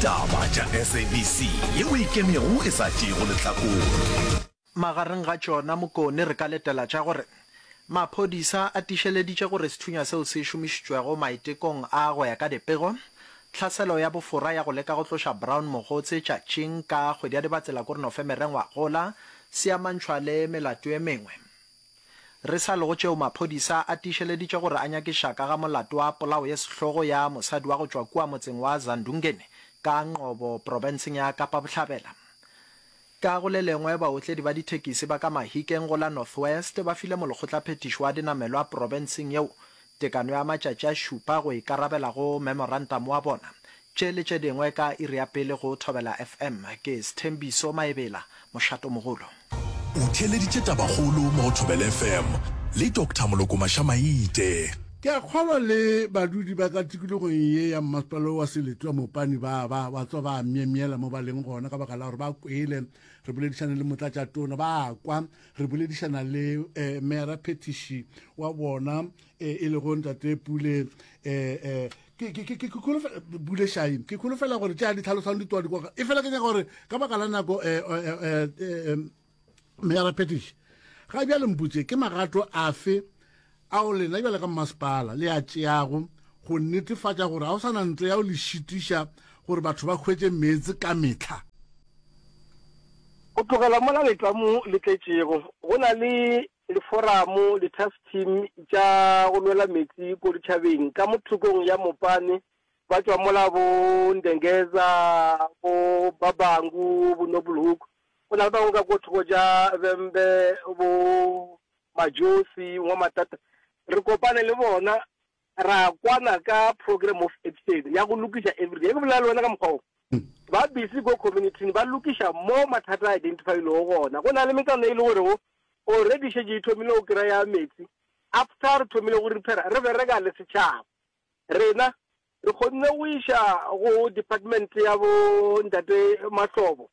Taba tša SABC ye o ikemego e sa tšeego lehlakore. Magareng ga tšona, Mokone re ka letela tša gore maphodisa a tišeleditše gore sethunya seo se šomišitšwego maitekong a go ya ka dipego tlhaselo ya bofora ya go leka go tloša Brown mogotse tšatšing ka kgwedi ya Dibatsela-Korinofemere ngwagola se amantšhwa le melato e mengwe. Re sa lego tšeo maphodisa a tiišeleditše gore a nyakiša ka ga molato wa polao ye sehlogo ya mosadi wa go tšwa kua motseng wa Zandungeni ka Nqobo profenseng ya Kapa Bohlabela. Ka go le lengwe, baotledi ba dithekisi ba ka Mahikeng go la North West ba file molekgotlaphethiši wa dinamelwa profenseng yeo tekano ya matšatši a šupa go ikarabela go memorantamo wa bona Tše le tše dingwe ka iri ya pele go Thobela FM. Ke Sthembiso Maebela, mošatomogolo. O theeleditše tabakgolo mo go Thobela FM le Doctor Moloko Mašamaite. Ke a kgolwa le badudi ba ka tikologong ye ya mmasepala wa Seletwa Mopani ba ba ba tswa ba myemyela mo ba leng gona ka baka la gore ba kwele re boledišana le motlatšatona, ba kwa re boledišana le um meyaraphethiši wa bona um e lego Ntate Pule um buleshaim ke kholofela gore tša di tlhalosang di toa dikoga e fela ke nyaka gore ka baka la nako eh, eh, eh, meara petish ga bjale mputse ke magato afe ao lena bjale ka mmasepala le a tšeago go netefatša gore ga o sa na ntlo ya o le šitiša gore batho ba hwetse meetse ka metlha go tlogela mola letlamo le tletšego go na le Liforamo, li-task team, tša go lwela meetse ko ditšhabeng ka mo thokong ya Mopane ba tšwa mola bo Ndengeza, bo Babangu, bo Noblehoek, go na le bangwe ka ko thoko tša Vhembe, bo Majosi, Nwamatata, re kopane le bona. ra kwana ka program of action ya go lokiša everyday ke bolela le wena ka mokgwa o ba busy ko communityn ba lokiša mo mathata a identifylego gona go na le metsana e le gore go already šetse e thomile go kry ya metsi after re thomile go repaira re bereka le setšhaba rena re kgonne go iša go department ya bo ntate mahlobo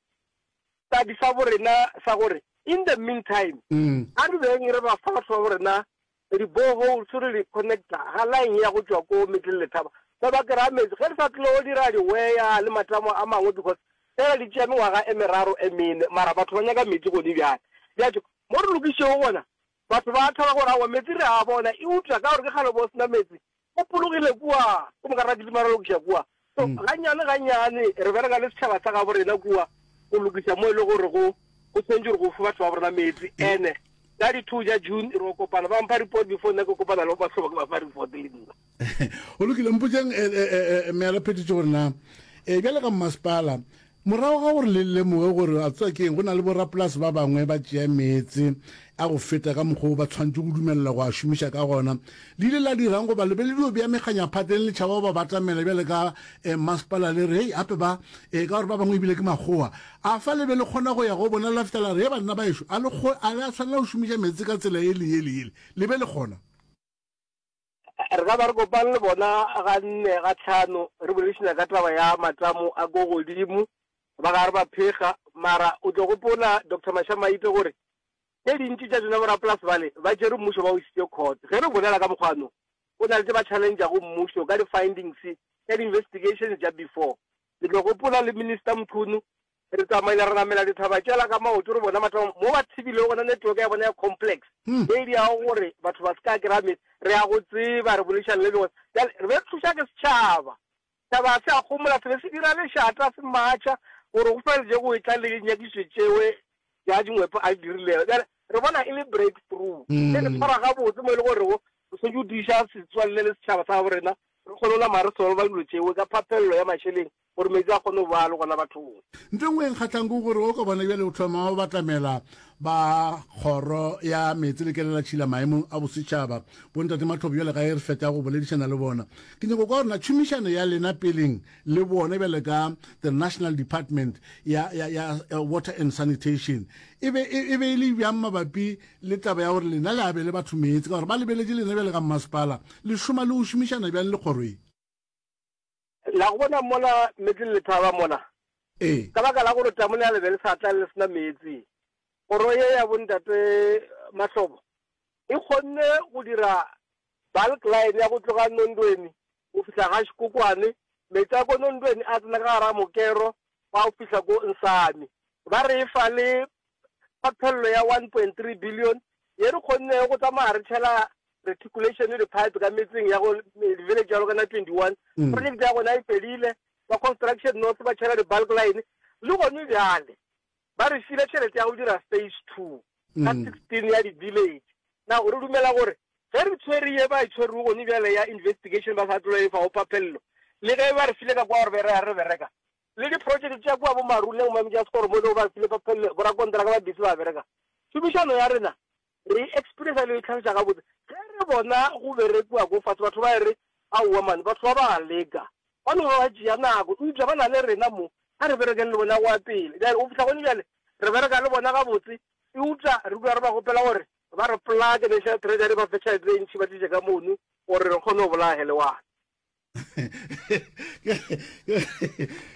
tadi sa bo rena sa gore in the meantime mm. a re beng re ba fa batho ba bo rena Di boreholes re di connecta ga line ya go tšwa ko Middle Letaba ba ba kry-a metsi ge re sa tlo dira di wire le matamo a mangwe because fela di tšea mengwaga e meraro e mene mara batho ba nyaka metsi gone bjale. Bjatho mo re lokišego gona batho ba thaba gore aowa metsi re a bona eupša ka gore ke kgale bo sena metsi O phologile kua go mokarra Kilimara go lokiša kua. So gannyane gannyane re bereka le setšhaba sa gabo rena kua go lokiša mo e le gore go go tshwanetse gore go fe batho ba bo rena meetse. Ene ka di two ja June re o kopana ba mpha report before nna ke kopana le ba tlhoba ke ba fa report le nna. Go lokile mpotšang eh, eh, eh, eh, mealaphethišo gore na eh, bjale ka mmasepala Morago ga gore le lemoge gore a tswa ke eng, go na le borapolase ba bangwe ba tšea meetse a go feta ka mokgwa wo ba tshwanetše go dumelela go a šomiša ka gona. Le ile la dira'ng goba le be le dio bea mekganyaphateng le tšhaba go ba batamela bjale ka masepala le re, Hei, gape ba, ee, ka gore ba bangwe e bile ke makgowa a fa? Le be le kgona go ya go bona la fihla la re, Hei, banna baešo, a le, a le a swanela go šomiša meetse ka tsela yele, yele, yele? Le be le kgona? re ka ba re kopane le bona ga nne ga tlhano re boledišana ka taba ya matamo a ko godimo ba ga re ba phega mara o tlo gopola dr mashamaite gore tse dintši tša tsona borapolasi bale ba tšere mmušo ba o isitse court ge re bolela ka mokgwano o na le tse ba challengea go mmušo ka di-findings tša di-investigations tša before ke tlo gopola le minister mchunu Re tsamaile ra namela dithaba tšela ka maoto re bona batho mo ba thibilego gona network ya bona ya complex hmm. e diago gore batho ba se ka kry-a metse re ya go tseba re bolešane le bone jale re be re thuša ke setšhaba taba se a gomola se be se dira lešata se matšha gore go fela je go e tla le dinyakiso tšewe ja dingwepo a dirilego jale re bona e le break through hmm. e re tshwara gabotse mo e le gore go se jodiša setswalle le setšhaba sa gaborena re kgone o nama re solva dilo tšewe ka phaphelelo ya mašheleng Gore meetse a kgone go ba le gona bathong. Nto engwe e nkgahlang ke gore o ka bona bjale o thoma go batamela ba Kgoro ya Meetse le Kelelatšhila maemong a bosetšhaba. Bo Ntate Mathopo bjale ga e re feta go boledišana le bona. Ke nyaka go kwa gore na tšhomišano ya lena peleng le bone bjale ka the National Department ya ya ya Water and Sanitation e be e be e le bjang mabapi le taba ya gore lena le abele batho meetse ka gore ba lebeletše lena bjale ka mmasepala le šoma le go šomišana bjang le kgoro ye. La go bona mola meetse le lethaba mona? Ee. Ka baka la gore tamone ya le be le sa tla le se na meetse, kgoro ye ya Bontate Mahlobo e kgonne go dira bulk line ya go tloga Nondweni go fihla ga Škokwane, meetse a ko Nondweni a tsena ka gare ga mokero wa go fihla ko Nsami. Ba re e fa le ka phelelo ya 1.3 billion ye re kgonnego go tsamaya re tšhela reticulation le dipipe ka metseng ya go village ya lokana 21 mm. project ya gona e felile ba construction north ba tšhela di-bulk line le gone bjale ba re file tšhelete ya go dira phase two ka 16 mm. ya di-village na re dumela gore ge re tshwere ye ba e tshwerego gone bjale ya investigation ba sa tlola e fa o papelelo le ge ba re file ka kwa gore be re ya re bereka le diprotšeke tša kua bomaruleng mo Mjascor mo e lego ba file borakonteraka ba bese ba bereka. Tšhomišano ya rena re e experienced le go e tlhagiša gabotse ge re bona go berekiwa ko fase, batho ba e re, Aowa man, batho ba ba a leka, ba no ba ba tšea nako, eupša ba na le rena mo, a re berekeng le bona go ya pele. Bjale go fihla gone bjale re bereka le bona gabotse, eupša re dula re ba kgopela gore ba re plug-e, National Treasury e ba fe tšhelete e ntši e ba tliše ka mono gore re kgone go bolaya helewana.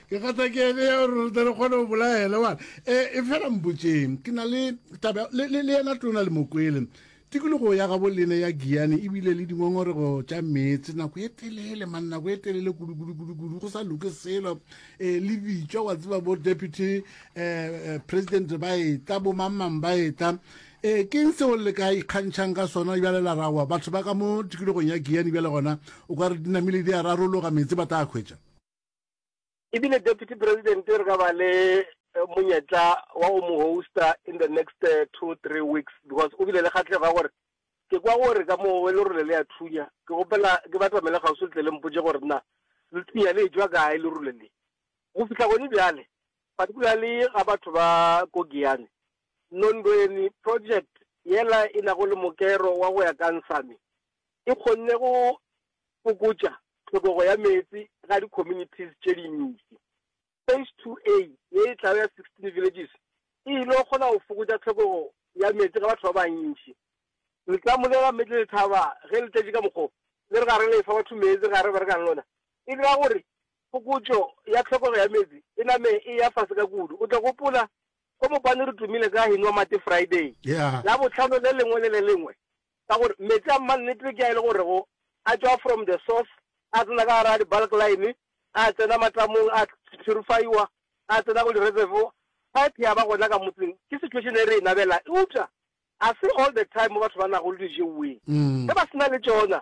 ke gata ke ene ya gore re re kgone go bolaele wa e fela mpotseng ke na le taba le yena tona le mokwele tikologo ya gabo lene ya giane ebile le dingongorego tša meetse nako e telele man nako e telele kudukudukudukudu go sa loke selo um le bitšwa wa tseba bo deputy um president ba eta bo mangmang ba eta Ee, ke'ng seo le ka ikgantšhang ka sona? Bjale la ra wa batho ba ka mo tikologong ya Giyani, bjale gona o ka re di namile di a rarologa, meetse ba tla hwetša. E bile Deputy President re ka ba le monyetla wa go mo hosta in the next two, three weeks because o bile le kgahlego ya gore ke kwa gore ka mo lerole le a thunya. Ke kgopela ke batamele kgauswi le tle le mpotše gore na le thunya le etšwa kae lerole le. Go fihla gone bjale, particularly ga batho ba ko Giyani, Nondweni Project yela e nago le mokero wa go ya ka Nsami e kgonne go fokotša tlhokego ya meetse ga di communities tše dintši. Phase 2A ye e tlago ya 16 villages e yilo kgona go fokotša tlhokego ya meetse ga batho ba bantši. Letlamo le la Middle Thaba ge le tletše ka mokgo le re ga re le efa batho meetse ga re berekang le lona e dira gore fokotšo ya tlhokego ya meetse e name e ya fase ka kudu. O tla gopola Ko Mopane re tumile ka Hinoa Mate Friday, Labohlano le lengwe le le lengwe, ka gore meetse a mannete ke a e le gorego a tšwa from the source, a tsena ka gare ga di-bulk line, a tsena matamong, a purify-wa, a tsena go di-reservoir, pipe ya ba gona ka motseng. Ke situation e re e nabelang. Eupša ga se all the time mo batho ba nago le dijeweng. Ge ba se na le tšona,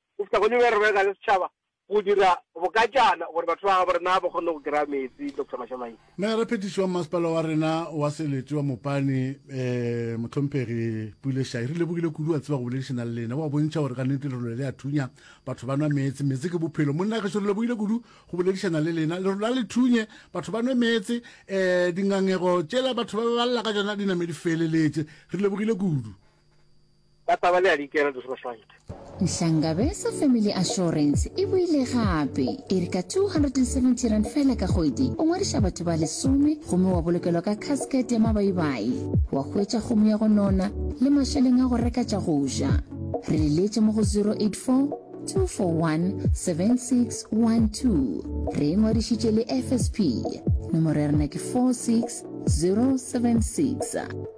Go feta go ne bja rena e na le setšhaba go dira bokatšana gore batho ba gabo rena ba kgone go kry-a meetse, Doctor Mashamaile. Meyara Phetiši wa Mmasepala wa rena wa Seletše wa Mopane, Mohlomphegi Pule Shayi, re lebogile kudu wa tseba go boledišana le lena. O a bontšha gore kannete lerole le a thunya, batho ba nwa meetse, meetse ke bophelo. Monna gešo re lebogile kudu go boledišana le lena. Lerole a le thunye, batho ba nwe meetse, um dingangego tšela batho ba ba lla ka tšona di name di feleletše. Re lebogile kudu. Ba taba le a di kera di sroswant. Nhlangabesa Family Assurance e boile gape e re ka 270 rand fela ka kgwedi o ngwadiša batho ba lesome gomme wa bolokelwa ka casket ya mabaibai wa hwetša kgomo ya go nona le mašeleng a go reka tša go ja re le leetše mo go 084 2417612 re e ngwadišitše le fsp nomoro ya rena ke 46076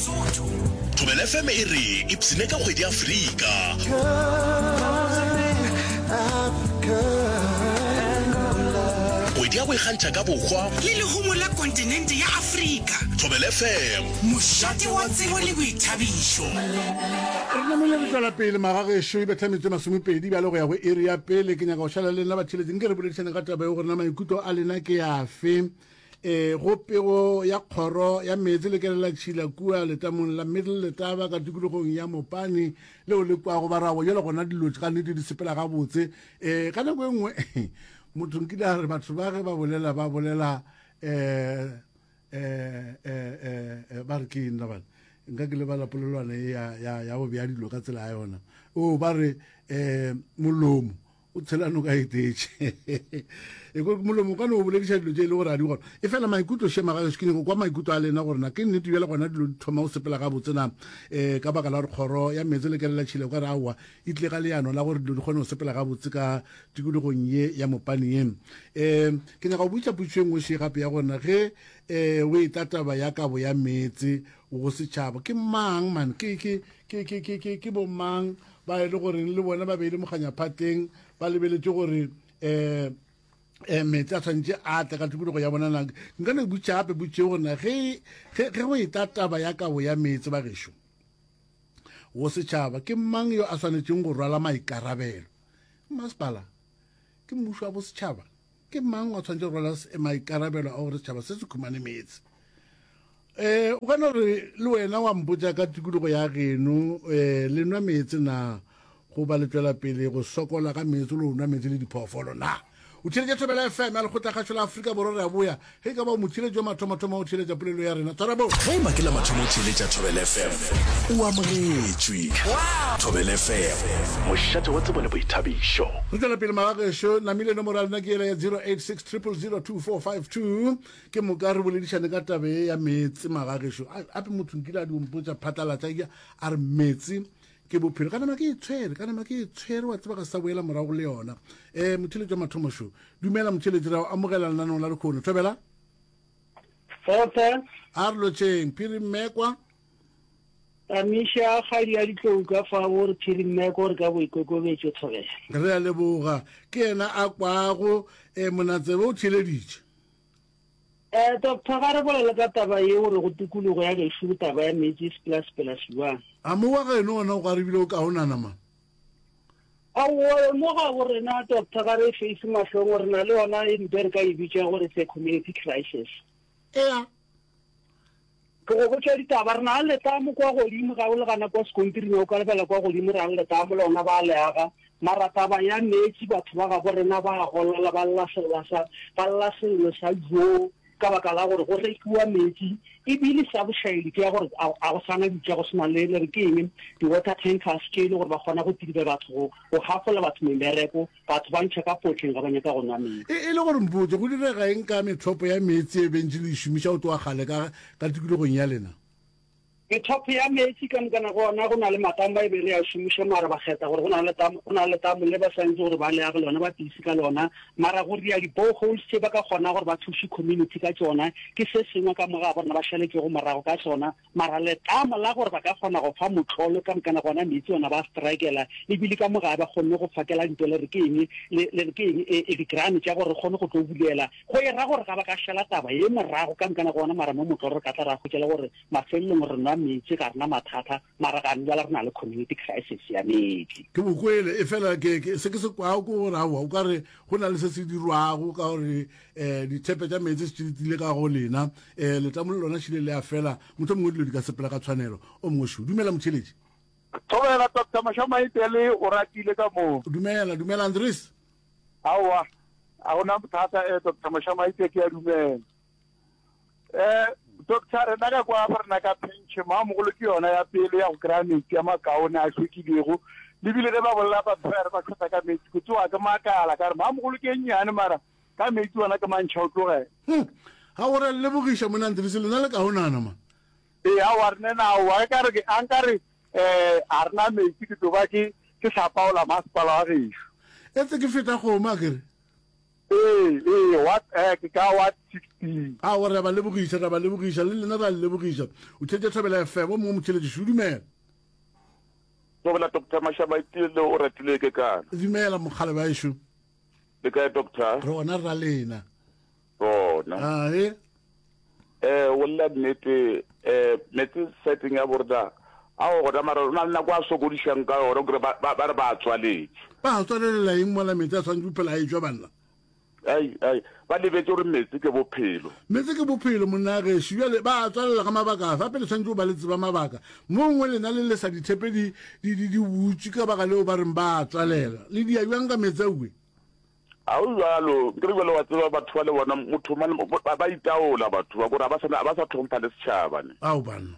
Thobela FM e re ipsine ka kgwedi Afrika. Kgwedi ya go ikgantšha ka bohwa. Le lehumo la kontinente ya Afrika. Thobela FM. Mošate wa tsebo le boithabišo. Re namile re tšwela pele magagešo e betla metse masomepedi bjale go ya go iri ya pele ke nyaka go šala le nna ba theletšeng ke re boledišane ga taba ye gore na maikutlo a lena ke yafe e go pego ya kgoro ya meetse le kelela tšhila kua letamong la middle letaba ka tikologong ya mopane leo le kwago ba rago jalo gona dilo ka nete di sepela gabotse um ka nako e nngwe motho nkile a re batho ba ge ba bolela ba bolela um um ba re ke eng labane nka ke lebala polelwana e ya bobja dilo ka tsela ya yona o ba re um molomo o tshela noka e tee e ko molomo ka no o bolediša dilo tše e le gore a di gona e fela maikutlo shema ga se ke nyako kwa maikutlo a lena gore na ke nnete bjale gona dilo di thoma o sepela ga botse na um ka baka la gore kgoro ya meetse le kelela tšhile ka re aowa e tle ga leano la gore dilo di kgone go sepela ga botse ka tikologong ye ya mopane ye um ke nyaka go botsa potso e nngwe še gape ya gorena ge um o e tataba ya kabo ya meetse go setšhaba ke mang man ke bomang ba e le goreng le bona ba beile mokganyaphateng ba lebeletše gore um um meetse a tshwanetse a tle ka tikologo ya bona nang nka no butša gape butše gore na ge go e tla taba ya kabo ya meetse ba gešo go setšhaba ke mang yo a swanetseng go rwala maikarabelo masepala ke mmušo wa bosetšhaba ke mang o tshwanetse go rwala maikarabelo a gore setšhaba se se khumane meetse um o kana gore le wena wa mpotsa ka tikologo ya geno um le nwa meetse na go ba le tswela pele go sokola ka meetse le go nwa meetse le diphoofolo na o theletše thobela fm ya lekgotla kgašo la aforika borwa re a boya Ge e ka ba o motheeletši wa mathomathomo o theeletša polelo ya rena, tshwara bo. Ge e ba ke la mathomo o theeletša Thobela FM, o amogetšwe. Thobela FM, mošate wa tsebo le boithabišo. Re tšwela pele magageso, namile nomoro ya lena ke yela ya 0860002452. Ke moka re boledišane ka tabe ye ya meetse magageso. Ape motho nkile a di ompotša phatlalatša, a re meetse Ke bophelo, ka nama ke e tshwere, ka nama ke e tshwere, wa tseba ga sa boela morago go le yona. Eh, motheletši wa mathomo šo. Dumela motheletši, ra o amogela lenanong la lekgono. Thobela. Tota. A re lotšeng, Phiri Mmekwa. Tamiša kgadi ya ditlou ka fa o re Phiri Mmekwa re ka boikokobetšo Thobela. Re a leboga. Ke yena a kwago, eh, monatsebe o theleditše. Eh doctor ga re bolele ka taba ye o re go tikologo ya gešo go taba ya meetse se pela sepela siwang. A mo wa geno ona o garibile o kaonana ma? Aowa mo ga bo rena doctor ga re e face mahlong re na le yona e mpe re ka e bitša gore se community crisis. Ea. Ke go botša ditaba. Re na le letamo kwa godimo, ga o le gana kwa sekontiring, o ka lebelela kwa godimo, re na le letamo, lona ba a le aga. Mara taba ya meetse, batho ba gabo rena ba a golela, ba lla sella sa, ba lla sello sa joo, ka baka la gore go rekiwa meetse. Ebile sa bošaedi ke ya gore a, a go sa na dika, go se na le, le re ke eng, di-water tankers tše e le gore ba kgona go tiribe batho, go, go gafolela batho mebereko. Batho ba ntšha ka potleng ge ba nyaka go nwa meetse. E, e le gore mpotše, go direga eng ka methopo ya meetse e bentše le e šomiša go tloga kgale ka, ka tikologong ya lena? Methopo ya meetse ka moka nako ona go na le matamo ba e be re a šomiša, mara ba kgetha gore go na le letamo, go na le letamo le ba santse gore ba le age lona, ba tiise ka lona. Mara go ria di-boreholes tše ba ka kgona gore ba thuše community ka tšona, ke se sengwe ka mo ga bona ba šaletšego morago ka sona. mara letlamo la gore ba ka kgona go fa motlolo ka mokana gona meetse ona ba strikela le bile ka moga ba kgonne go fakela dintwa le re ke eng le re ke eng e di grant tša gore kgone go tlo bulela go e ra gore ga ba ka shela taba ye morago ka mokana gona mara mo motlolo re ka tla ra kgotšela gore mafelelong re nwa meetse ga rena mathata mara ga ne jala re na le community crisis ya meetse ke bokwele e fela ke se ke se kwao ke gore aowa o ka re go na le se se dirwago ka gore eh dithepe tša meetse se tile ka go lena eh letamo le lona šile le a fela motho mongwe dilo di ka sepela ka tshwanelo o mongwe šo dumela motheletši thobela doctor mošamaitele o ratile ka moo dumela dumela andres aowa a gona bothata eh doctor mošamaite ke ya dumela eh doctor re na ka kwa ba rena ka penche maamogolo ke yona ya pele ya go kry-a metsi ya makaone a tlhwekilego lebile ge ba bolela batho ba re ba tlhotsa ka metsi ko tsewa ke makala ka re maamogolo ke nnyane mara Ka meetse wena ke mantšha o tloge. Hum, ga go re lebogiša monna Ndrisi, lena le kaonana ma. Ee, aowa re ne na aowa, ka re ke a nka re eh a re na meetse ke tlo ba ke ke hlapaola masepala wa gešo. Etse ke feta kgomo a kere. Ee, ee, wa eh ke ka wa 16. Aowa re a ba lebogiša, re a ba lebogiša, le lena re a le lebogiša. O thetše Thobela FM, o mongwe motšheletši šo, dumela. Thobela Doctor Mashaba Itiele o ratile ke kana. Dumela mokgalab'aešo. Le kae doctor? Re gona rra lena. Gona. Ah, he. Eh, o lla nnete, eh, metse setting ya borda. A o gona mara na nna kwa sokodishang ka yona gore ba ba re ba tswaletse. Ba tswalelela eng mola metse a tshwanetse phela a e jwa banna. Ai, ai. Ba lebetše gore meetse ke bophelo. Meetse ke bophelo, monna gešo. Bjale, ba a tswalela ka mabaka afe? Gape le swanetše go ba le tseba mabaka. Moo ngwe lena le lesa dithepe di, di, di, di butše ka baka leo ba reng ba a tswalela. Le dia bjang ka meetse aowi? A go bjalo. Nkere bjale wa tseba batho ba le bona, motho mang, ba, ba itaola batho ba, gore ga ba sa, ga ba sa tlhompha le setšhaba ne. Ao, banna.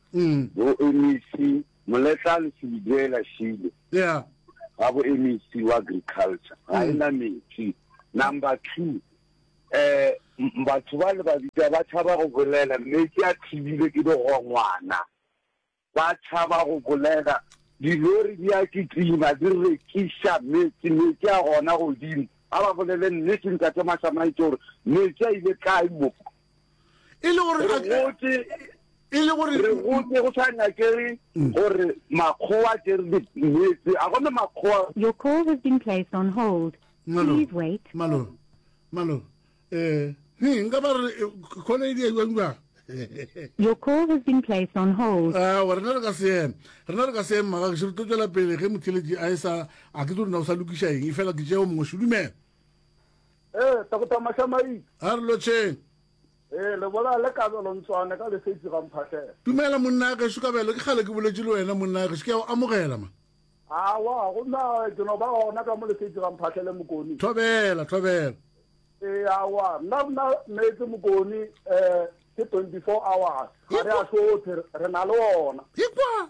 boemec moletlane seliduela šile yeah. ga boemec wa agriculture ga e na metsi number two eh batho ba le babita ba tshaba go bolela mme ke a thibile ke le go ngwana ba tshaba go bolela dilori di a kitima di rekisa metsi metsi a gona godimo a ba bolele nnete ntate masamaitse gore metsi a ile kae mo e le gore re gotse e le gore re gotse go sa nyakege mm. gore makgowa ke re dimetse a gone makgowa your call has been placed on hold please wait malo malo eh he nka ba re khole eh, di e ngwa Your call has been placed on hold. Ah, wa rena re ka seema. Rena re ka seema ga ke tlo tswela pele ge motheletši a e sa a ke tlo rena o sa lokiša eng. E fela ke tšeo mongwe šudumela. Ee, takotama xa maiti. A re lotšheng. Ee, lebola le kabelo ntswane ka lesetsi ga mphatlhela. Dumela monna a gešo kabelo, ke kgale ke boletše le wena monna a gešo, ke ya o amogela ma. Awa, gomme a ke no ba gona ka mo lesetsi ga mphatlhele mokoni. Thobela, thobela. Ee, awa, nna nna meetse mokoni, eh, ke 24 hours, ga re a hlothe, re na le ona. Ikwa!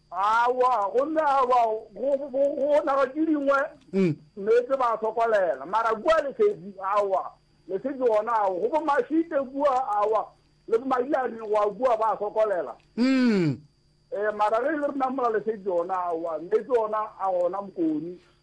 Aowa, gomme aowa, go, go, go, go naga tše dingwe, meetse ba sokolela, mara kua lesedi, aowa, lesedi gona, aowa, go bomashite kua, aowa, le bomadiani goa kua ba sokolela. Ee, mara ge e le rena mola lesedi gona, aowa, meetse ona a gona mokoni,